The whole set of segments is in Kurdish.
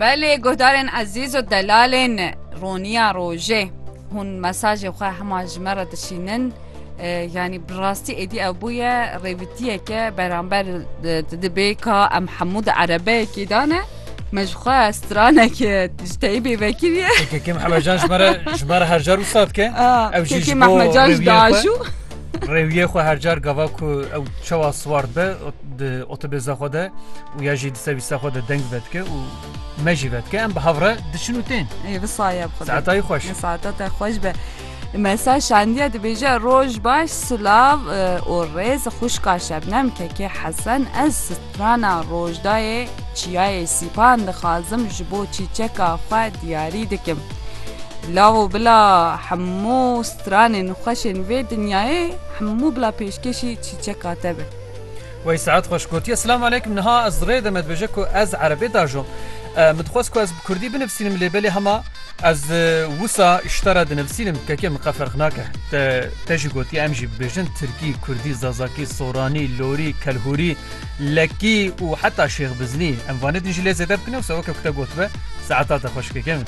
Belê guhdarên ezîz û delalên roniya rojê hûn mesajê xwe hema ji me re dişînin yanî bi rastî êdî ew bûye rêvitiyeke beramber dibê ka em hemû di erebeyekî dane me ji xwe stranekê ji teyî bê vekiriye Kekê Mehmecan ji me re ji me re hercar wisa dike ew jî ji bo rêviyê xwe. Rêwiyê xwe her car gava ku ew çawa siwar dibe di otobêza xwe de û ya jî di sevîsa xwe de deng vedike û me jî vedike em bi hevre diçin û tên. Ê bi saye xwe. Saetayî xweş. Saeta te xweş be. Mesela şandiye dibêje roj baş silav û rêz xuşka şebnem kekê hesen ez Rana Rojdayê, Çiyayê Sîpan dixwazim ji bo çîçeka xwe diyarî dikim. Lav û bila hemû stranên xweşên vê dinyayê, hemû bila pêşkêşî çîçeka te be. Wey Sead xweş gotiye, Silam aleykum, niha ez rê de me dibêje ku ez erebê diajom. Min dixwest ku ez bi kurdî binivîsînim lê belê hema. Ez wisa îşta re dinivisînim kekê min qe ferq nake. Te te jî gotiye em jî bibêjin tirkî, kurdî, zazakî, soranî, lorî, kelhûrî, lekî û heta şêxbiznî. Em vanê din jî lê zêde bikine wisa weke ku te gotibe saeta te xweş kekê min.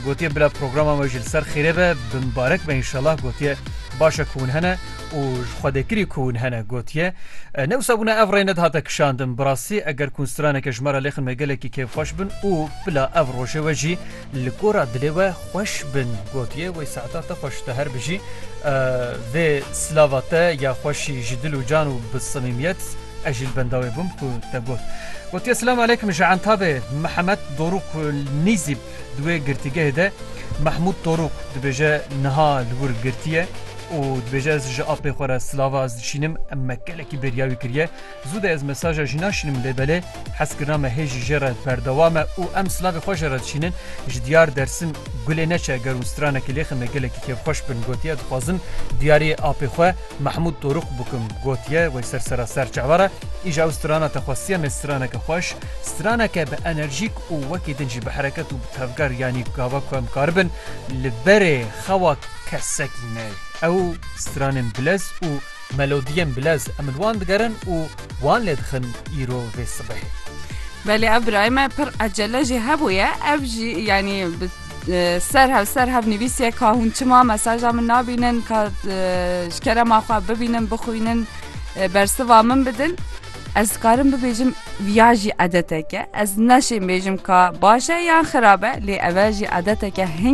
Gotiye bila programa me jî li ser xêrê be, bi mibarek be înşellah gotiye baş e ku hûn hene. û ji xwedêkirî ku hûn hene gotiye, Ne wisa bûne ev rê nedihate kişandin. Bi rastî eger kunstraneke ji me re lêxin me gelekî kêfxweş bin û bila ev rojê we jî li gora dilê we xweş bin gotiye Wey saeta te xweş te her bijî vê silava te ya xweşî ji dil û can û bi simîmiyet ez jî li benda wê bûm ku te got. Gotiye Silam aleykum ji Entabê Mihemed Dorûk Nîzî. Di wê girtîgehê de Mehmûd Torûk dibêje niha li wir girtiye û dibêje ez ji apê xwe re silava ez dişînim, em me gelekî bêriya wî kiriye. Zû de ez mesaja jî naşînim lê belê hezkirina me hê jî jê re berdewam e û em silavê xwe jê re dişînin. Ji diyar Dersim gulê neçe ger û stranekê lê xemê gelekî kêfxweş bin gotiye dixwazim diyariyê apê xwe Mehmûd Torûk bikim gotiye wê ser sera serçe were îja ew strana te xwestiye mê straneke xweş straneke bi enerjîk û wekî din jî bi hereket û bi tevger yanî gava ku em karibin li berê xewa kesekî neyê. Ew stranên bilez û melodiyên bilez em li wan digerin û wan lê dixin îro vê sibehê. Belê ev birayê me pir ecele jî hebûye ev jî yanî bi ser hev ser hev nivîsiye ka hûn çima mesaja min nabînin ka ji kerema xwe bibînin bixwînin bersiva min bidin. Ez dikarim bibêjim viya jî edeteke ez neşêmbêjim ka baş e yan xirab e lê ev e jî edeteke hin